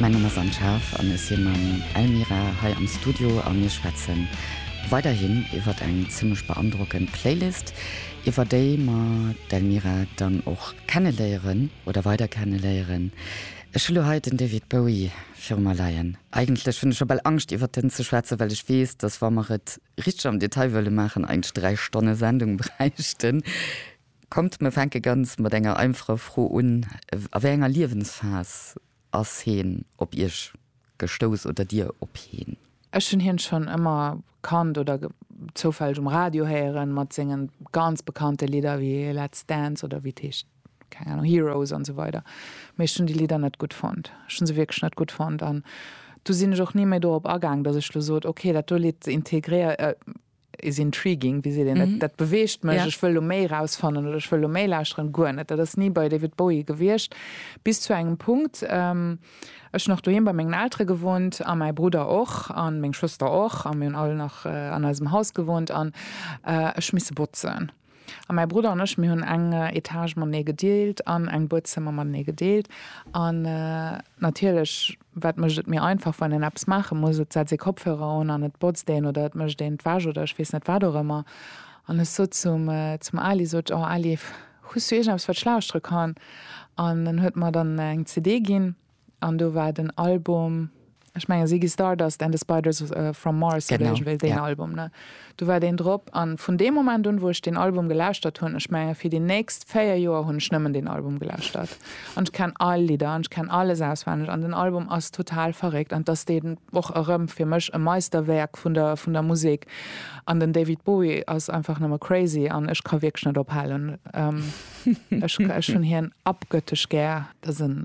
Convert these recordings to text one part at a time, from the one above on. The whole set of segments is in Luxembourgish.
Mäin Numm ass Anne Schaaf an ech si mam Elmira hei am Studio a mir schwätze weiderhin iwwert eng zimmlech beandrockend Playlist, iwwer déi mer d'Elmira dann och kenneléieren oder weider kenneléieren. Ech hu lo hei den David Bowie viru mer leien. Eigentlech hunn ech scho bal Angscht iwwert en ze schwätzen, well ech weess, dass wa mer et richteg am Detail wëlle maachen, eigentlech dräi Stonne Sendung bräichten. Kommt, mir fänke ganz mat enger einfacher Fro un, A wéi enger Liewensphas ass heen op Iech gestouss oder Dir op heen? Ech hunn hien schonn ëmmer kannt oder zoufälleg um Radio héieren mat sengen ganz bekannte Lidder wéi Let's Dance oder wéi et heescht, keng Ahnung, Heroes an esou weider. Mee ech hunn déi Lidder net gutt fonnt. Ech hunn se wierklech net gutt fonnt an du sinn ech och ni méi dorop agaang, dass ech lo sot, ok, dat do Lidd integréier, is intriguing, wéi seet een et, dat beweegt mech, ech wëll lo méi erausfannen oder ech wëll lo méi lauschteren, guer net. Dat ass ni bei David Bowie gewiescht, bis zu engem Punkt. Ech hunn och doheem bei mengen Eltere gewunnt a mäi Brudder och a meng Schwëster och a mir hunn all nach an eisem Haus gewunnt an ech misse botzen. A mäi Brudder an ech, mir hunn eng Etage matenee gedeelt an eng Buedzëmmer matenee gedeelt. An natierlech, wat mécht et méi einfach, wann een eppes maache muss? Et setzt ee Kopfhörer un an et botzt een oder et mécht een d'Wäsch oder ech weess net wat och ëmmer. An ech sot zum, zum Ali, sot ech, oh Ali, hues du iergendeppes, wat ech lauschtere kann? An en huet mer dann eng CD ginn. An do war den Album, ech mengen Ziggy Stardust and the Spiders from Mars oder iergendwéi deen Album, ne? Do war deen drop. A vun deem Moment un, wou ech deen Album gelauschtert hunn, ech menge fir déi nächst véier Joer hunn ech nëmmen deen Album gelauschtert. An ech kenn all Lidder an ech kenn alles auswenneg an den Album ass total verréckt. An 't ass deen och erëm fir mech e Meisterwäerk vun der vun der Musek. An den David Bowie ass einfach nëmme crazy an ech ka wierklech net ophalen. Ech hunn hien abgöttesch gär. Dat ass en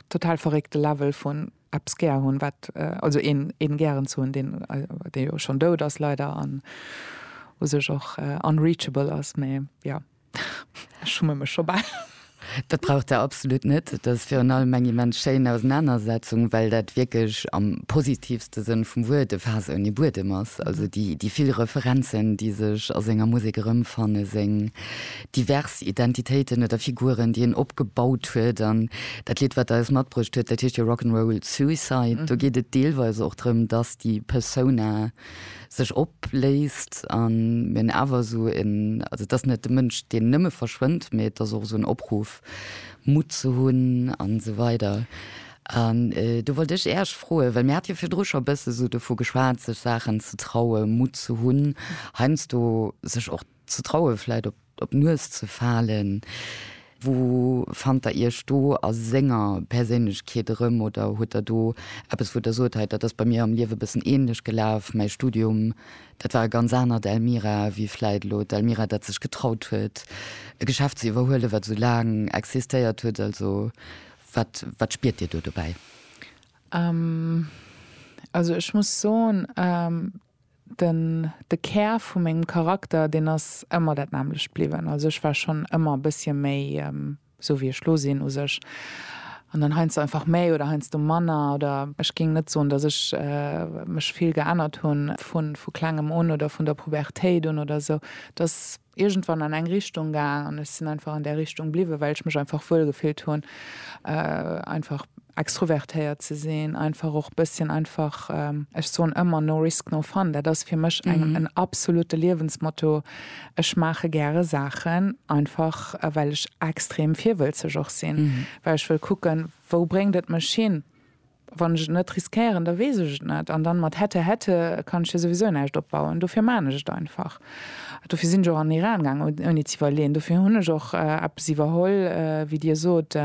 total verréckte Level vun eppes gär hunn, wat, also een, een gären ze hunn, deen, dee jo schonn dout ass leider an u sech och unreachable ass. Mee jo, ech schumme mech scho bal. Dat braucht Der absolut net. Dat ass virun allem eng immens schéin Ausenanersetzung, well dat wierklech am positivste Sënn vum Wuert e Faass ouni Buedem ass. Also déi, déi vill Referenzen, déi sech a senger Musek erëmfannen, seng divers Identitéiten oder Figuren, déi en opgebaut huet an dat Lidd, wat Der eis matbruecht hutt, dat heescht jo Rock 'n' Roll Suicide. Do geet et deelweis och drëm, dass déi Persona sech opléist an mir hunn awer esou en, also et ass net de Mënsch, deen nëmme verschwënnt, mee et ass och esou en Opruff, Mutt ze hunn a sou weider. An do wollt ech Äech froen, well mir hate jo virdru scho e bësse sou dovu geschwat, sech Saachen ze trauen, Mutt ze hunn, heiansdo sech och, Ze traue vläit op d'Nues ze falen? Wou fannt der Iech do a senger Perséinlechkeet erëm? Oder huet der do eppes, wou der sot, hei dat ass bei mir am Liewe e bëssen änlech gelaf, mäi Studium, dat war e ganz anert Elmira wéi vläit elo d'Elmira, dat sech getraut huet e Geschäft ze iwwerhuelen, wat esou laang existéiert huet? Also wat wat spiert Dir do dobäi? Also ech muss soen. Den, de Kär vu mengem Charakter, deen ass ëmmer dat nämmlecht bliwwen. Also ech war schonn ëmmer e bëssche méi, esou wéi ech lo sinn, u sech. An dann heiansdo einfach méi oder heiansdo manner. Oder ech géing net soen, datt ech mech vill geännert hunn vu klengem un oder vun der Pubertéit un oder esou. Et ass iergendwann an eng Richtung gaang an ech sinn einfach an där Richtung bliwwen, well ech mech einfach wuel gefillt hunn, einfach extrovertéiert ze sinn, einfach och bësschen einfach, ech soen ëmmer no risk, no fun. Dat ass fir mech eng en absolute Liewensmotto. Ech maache gäre Saachen einfach, well ech extrem virwëlzeg och sinn, well ech wëll kucken, wou bréngt et mech hin. Wann ech et net riskéieren, da weess ech et net. An dann mat hätte, hätte kann ech jo souwisou näischt opbauen. Dofir maan ech et einfach. Dofir sinn ech och an Iran gaang, ouni ze iwwerleeën. Dofir hunn ech och eppes iwwerholl, wéi Dir sot,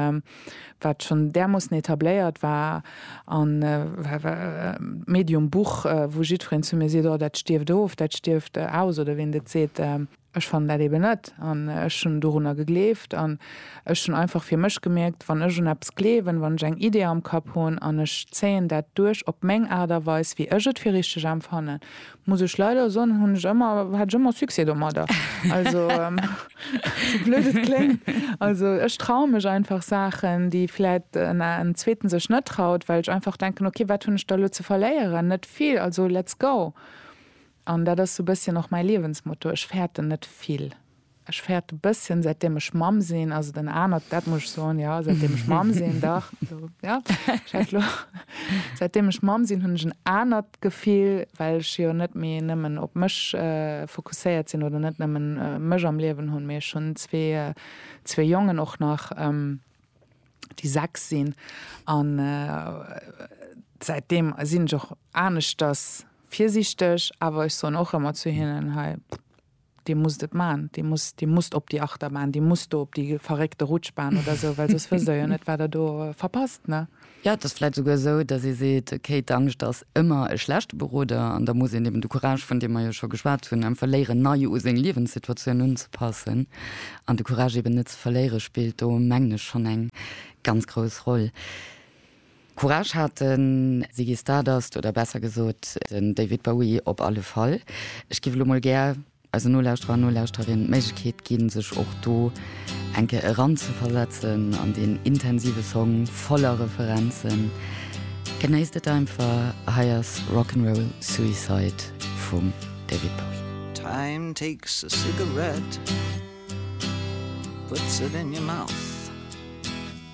wat schonn därmoossen etabléiert war, a medium Buch, wou jiddwereen zu mir seet, oh dat stierft of, dat stierft aus, oder wéi en et seet. Ech fannen dat eben net an ech hunn dorunner gegleeft an ech hunn einfach fir mech gemierkt, wann ech un eppes gleewen, wann ech eng Idee am Kapp hunn an ech zéien dat duerch op meng Aart a Weis, wéi ech et fir richteg empfannen, muss ech leider soen, hunn ech ëmmer, hat ech ëmmer Succès domadder. Also, sou blöd et kléngt, also ech traue mech einfach Saachen, déi vläicht en Zweeten sech net traut, well ech einfach denken, okay, wat hunn ech da elo ze verléieren? Net vill, also let's go. An dat ass sou bësschen och mäi Liewensmotto, ech fäerten net vill. Ech fäerte bësschen, säitdeem ech Mamm sinn, ass et en anert, dat muss ech soen, jo, säitdeem ech Mamm sinn, dach, jo, jo, ech hat lo, säitdeem ech Mamm sinn, hunn ech en anert Gefill, well ech jo net méi nëmmen op mech fokusséiert sinn oder net nëmmen mech am Liewen hunn, mee ech hunn zwee, zwee Jongen och nach, déi sechs sinn. An säitdeem sinn ech och aneschters. Virsiichteg, awer ech soen och ëmmer zu hinnen, hei, Dir musst et maachen, Dir musst, Dir musst op déi Achterbahn, Dir musst do op déi verréckte Rutschbahn oder esou, well soss wësst Der jo net, wat Der do verpasst, ne? Jo, et ass vläicht esouguer esou, dass ee seet, okay, d'Angscht ass ëmmer e schlechte Beroder an da muss een eben de Courage, vun deem mer jo scho geschwat hunn, einfach léieren, nei u seng Liewenssituatioun unzepassen. An de Courage eben net ze verléiere spillt do, mengen ech, schonn eng ganz grouss Roll. Courage hat de Ziggy Stardust, oder besser gesot den David Bowie op alle Fall. Ech géif elo mol gär eisen Nolauschterer an Nolauschterinnen d'Méiglechkeet ginn, sech och do eng Kéier eranzeversetzen an deen intensive Song voller Referenzen. Genéisst et einfach, hei ass Rock 'n' Roll Suicide vum David Bowie. Time takes a cigarette, puts it in your mouth.